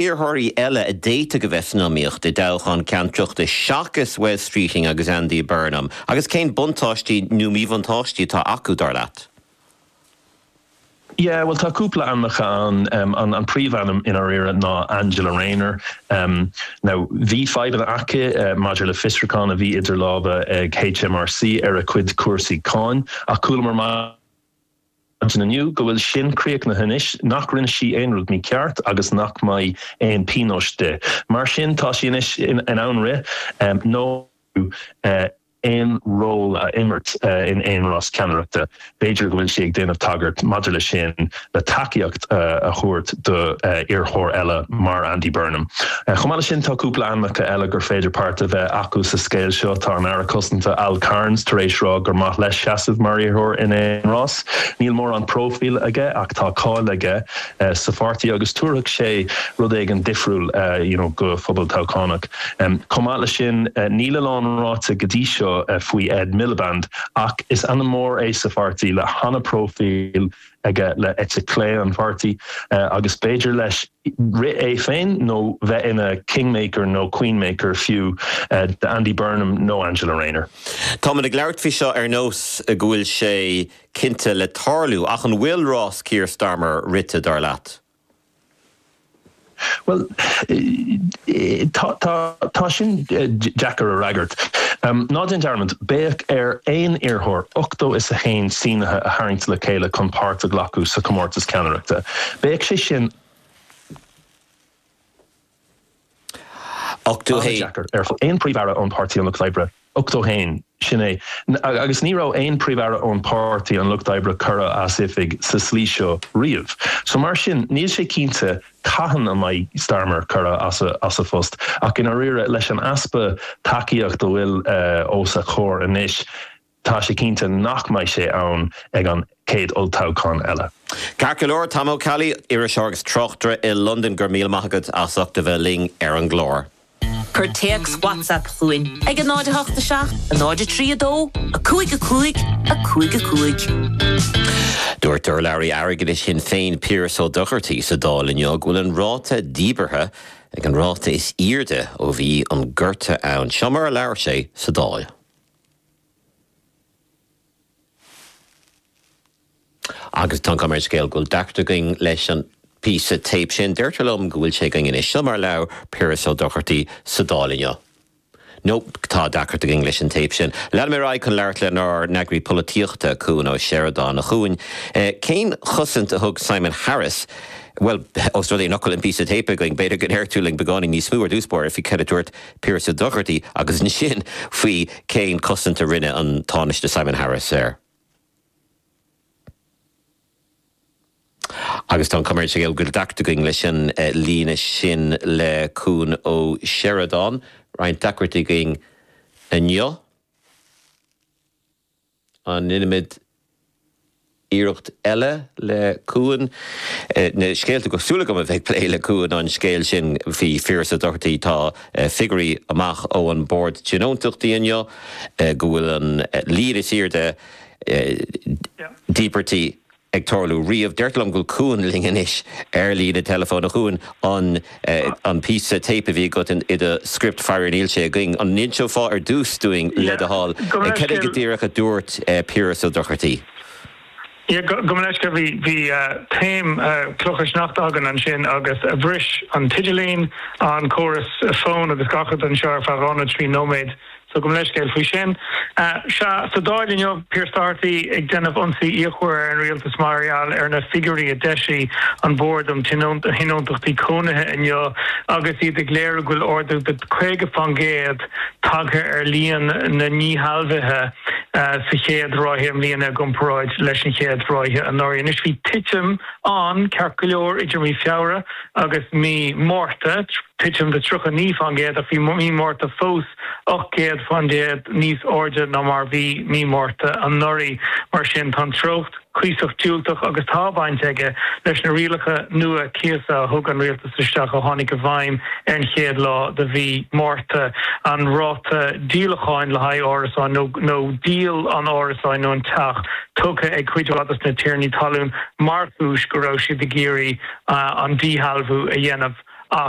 iarrthóirí eile a d'fhéadfadh a bheith san iomaíocht i dtoghchán ceannaireachta seachas Wes Streeting agus Andy Burnham agus cén buntáistí nó míbhuntáistí atá acu, dar leat? Yeah, bhuel tá cúpla ainmneacha ann, an príomhainm i ndáiríre ná Angela Rayner. Now bhí fadhbanna aici maidir le fiosrúchán a bhí idir lámha ag HMRC ar a cuid cúrsaí cáin ach chualamar maid in inniu go bhfuil sin críochnaithe anois, nach rinne sí aon rud mícheart agus nach mbeidh aon pionós di. Mar sin tá sí anois in ann rith nó aon ról a imirt in aon rás ceannaireachta. B'fhéidir go bhfuil sí ag déanamh tagairt maidir le sin le tacaíocht a thabhairt do iarrthóir eile mar Andy Burnham. Chomh maith le sin tá cúpla ainmneacha eile gur féidir páirt a bheith acu sa scéal seo. Tá an Aire Cosanta Al Carns tar éis rá gur maith leis seasamh mar iarrthóir in aon rás. Níl mórán próifíle aige ach tá cáil aige sa pháirtí agus tabharfadh sé rud éigin difriúil you know do phobal toghchánach. Chomh maith le sin níl a lán ráite go dtí seo faoi Ed Miliband ach is ainm mór é sa pháirtí le hana-próifíl. aige le eite clé an pháirtí, agus b'fhéidir leis rith é féin nó bheith ina kingmaker nó queenmaker fiú d'Andy Burnham nó Angela Rayner. Táimid ag labhairt faoi seo ar nós go bhfuil sé cinnte le tarlú, ach an bhfuil rás Keir Starmer rite, dar leat? Bhuel, tá, tá sin deacair a fhreagairt. Ná déan dearmad, beidh ar aon iarrthóir ochtó is a haon sínitheoir a tharraingt le chéile chun páirt a ghlacadh sa chomórtas ceannaireachta. Bheadh sé sin. ana-dheacair ar fad. Aon Phríomh-Aire ón Páirtí an Lucht Oibre, 81, sin é agus ní raibh aon Phríomh-Aire ón Páirtí an Lucht Oibre curtha as oifig sa slí seo riamh. So mar sin, níl sé cinnte cathain a mbeidh Starmer curtha as a phost ach i ndáiríre, leis an easpa tacaíocht a bhfuil os a chomhair anois, Tá sé cinnte nach mbeidh sé ann ag an chéad olltoghchán eile. Ceart go leor, Tom Ó Ceallaigh, iriseoir agus tráchtaire i Londain, go raibh míle maith agat as ucht a bheith linn ar an gclár. Cuir téacs WhatsApp chugainn ag 08 7 0 3 2 5 5 5 5. Dúirt urlabhraí airgeadais Shinn Féin Piaras Ó Dochartaí sa Dáil inniu go bhfuil an ráta díbeartha ag an ráta is airde ó bhí an gorta ann. Seo mar a labhair sé sa Dáil. Agus tá an chuma ar an scéal go bhfuil deacracht againn leis an bpíosa téip sin, deirtear liom go bhfuil sé againn anois. Seo mar a labhair Piaras Ó Dochartaí sa Dáil inniu. Nó tá deacracht againn leis an téip sin. Leanfaidh mé ar aghaidh chun labhairt lenár n-eagraí polaitíochta, Cuan Ó Seireadáin, a Chuain. Cén chosaint a thug Simon Harris, bhuel, ós rud é nach bhfuil an píosa téip againn, b'fhéidir go ndéarfá linn beagáinín níos mó ar dtús báire faoi cad a dúirt Piaras Ó Dochartaigh agus ansin faoi cén cosaint a rinne an Tánaiste Simon Harris air. Agus tá an chuma air go bhfuil deacracht againn leis an líne sin le Cuan Ó Seireadáin, Roinnt deacrachtaí againn inniu. An ndéanfaimid iarracht eile le Cuan? Na scéalta go raibh súil agam a bheith ag plé le Cuan an scéal sin faoi Phiaras Doherty. Tá figiúirí amach ó an Bord Tionóntachtaí inniu go bhfuil an líon is airde díbirtí ag tarlú riamh. Deirtear liom go bhfuil Cuan linn anois ar líne teileafóin. A Chuain, an an píosa téip a bhí agat i do script, faraor níl sé againn. An n-inseofá ar dtús dúinn, le do thoil, cad go díreach a dúirt Piaras Ó Dochartaí? Yeah, gabh mo leithscéal. Bhí bhí taom clocha sneachta againn ansin agus bhris an t-idirlíon, an córas fóin agus gach rud anseo ar feadh dhá nó trí nóiméad So gabh mo leithscéal faoi sin. Sea, sa Dáil inniu, Pearse Doherty ag déanamh ionsaí fíochmhar ar an rialtas mar gheall ar na figiúirí a d'eisigh an Bord um Thionóntachtaí Cónaithe inniu agus iad ag léiriú go bhfuil ardú de 50 fán gcéad tagtha ar líon na ndíshealbhuithe sa chéad ráithe i mbliana i gcomparáid leis an chéad ráithe anuraidh. Anois, bhí titim ann, ceart go leor, idir mí Feabhra. agus mí Márta, titim de 39%, ach bhí mí Márta fós 8% níos airde ná mar a bhí mí Márta anuraidh. Mar sin, tá an treocht cuíosach diúltach agus tá baint aige leis na rialacha nua cíosa a thug an rialtas isteach a tháinig i bhfeidhm ar an chéad lá de mhí Márta, an ráta díolacháin le haghaidh árasáin nó díol an árasáin nó an teach. tugtha ag cuid de na tiarnaí talún mar chúis go raibh siad ag iarraidh an díshealbhú a dhéanamh ach.